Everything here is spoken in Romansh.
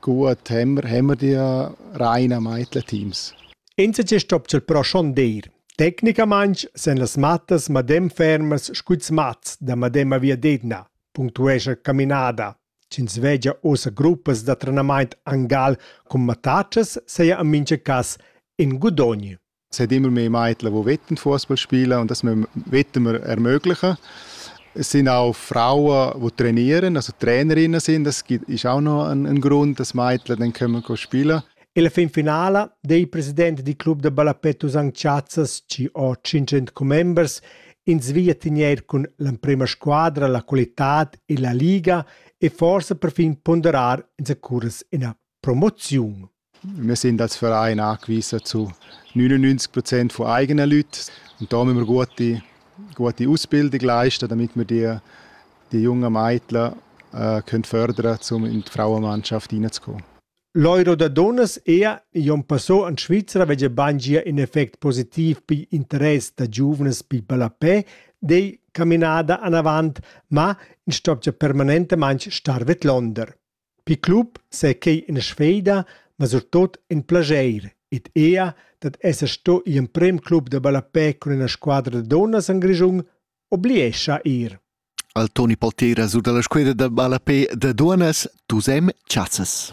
Cua temmer hemmerdia Raina mait latims. Insatge stopcha però schondeir. Tecnicamaing sun las mattas madem fermas scu'ls mats da mademma viadetna, punctuescha Caminada. Ch'ins vegia ussa gruppas da trenamaint angal cun mattatschas saja en mincha cas in gudogn. seit immer mehr Mädchen, die wetten Fußball spielen und dass wir Wetten ermöglichen. Es sind auch Frauen, die trainieren, also Trainerinnen sind. Das ist auch noch ein, ein Grund, dass Mädchen dann kommen spielen. E la fin finala dei president di club da ballapetto St. Chazzas ci ho 500 commembers in svia tenier cun l'emprema squadra, la qualitad e la liga e forse perfin ponderar in sacuras ina promoziun. Wir sind als Verein angewiesen zu 99 Prozent von eigenen Leuten. Und da müssen wir gute, gute Ausbildung leisten, damit wir die, die jungen Mädchen äh, können fördern um in die Frauenmannschaft reinzukommen. L'Euro da dunnas è Jon Passò en Svizra veggia bangia in effect positiv pi interess da giuvnas pi ballapè dei caminada anavant, ma in stopgia permanentemente star vet Londer. Pil club sei quei ina sfida, ma surtut in plascher ed ella dad esser sto igl emprem club da ballapè cun ina squadra da dunnas en Grischun obliescha ir. Al Toni Paltera sur dalla squadra da ballapè da dunnas Tusem Chazzas.